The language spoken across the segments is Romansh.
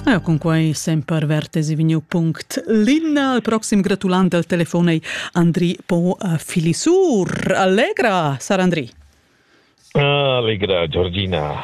Ja, cun quai semper vertes vegniu punct Linna. Il proxim gratulant al telefon ei Andri Po Filisur. Allegra, sar Andri. Allegra, Giorgina.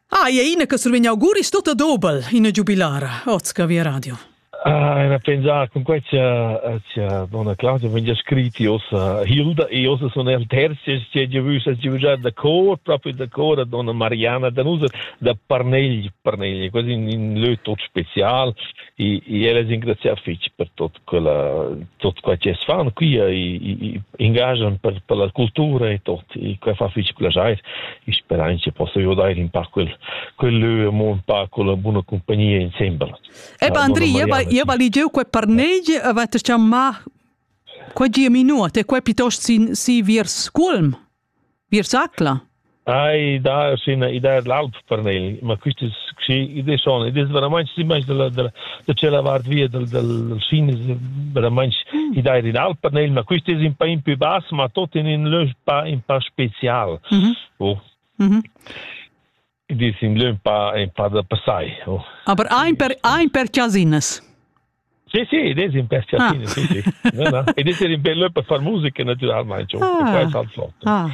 Ah, e ina che survegn auguris tota dobel in giubilara, Ozca Via Radio. Ah, na pensar con quei sia sia donna Claudia vegn scritti ossa Hilda e ossa son el terzi che je vus a giujar da cor proprio da cor a donna Mariana da nus da Parnegl Parnegl quasi in, in lö tot special e e ella ringraziar fitch per tot quella tot quei che fan qui e engaggian per per la cultura e tot e quei fa fitch quella jai e speranze posso io dare in pa quel quel lö mo un pa con la buona compagnia insieme Eba Andri, eba, eba ligieu quei parnegi, eba te chamma quei gia minut e quei piuttost sin si viers Culm, viers Acla. Ai, da, sin idea l'alp per nel, ma questi sì, idee sono, idee veramente si manch della della da c'è la vart via del del sin veramente mm. idea in alp per nel, ma questi è un po' in più bass, ma tutti in un lösch pa in po' special. Mhm. Oh. Mhm. I di simile un pa un pa da passai. Oh. Aber ein per ein per casines. Sì, sì, ed è un per casine, ah. sì, sì. No, no. Ed è un bello per far musica naturalmente. Ah. Questo è alzotto. Ah.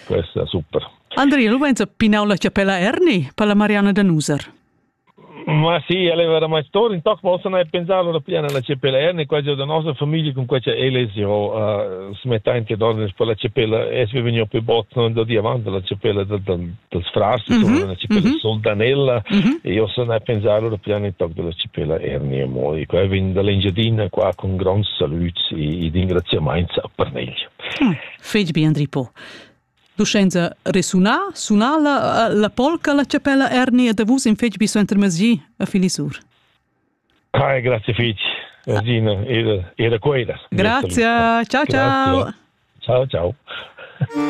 Questo è super. Andrea, lu venza pinau la chapella Erni per la Mariana da Nuser. Ma sì, el ei veramein stor, in toc possa ne pensar ora pia nella cepelera, ne quasi da nossa famiglia con quella ele si ho uh, smetta in che dormir per la cepella es vi vegniu più bot non da diamant dalla cepella del del, del frars mm -hmm. una cepella mm -hmm. soldanella mm -hmm. e io sono a pensare ora pia in toc della cepella erni e moi qua vin dall'Engiadina qua con grandi saluti e ringraziamenti per negli mm. Fetg bien Ripo. Duschenza resunà, sunà la, la polca, la chapella ernia da vus in fetg bi suenter masgi a Filisur. Kai, grazie fitch. Rosina era, era quella. Grazie, ciao ciao. Ciao ciao.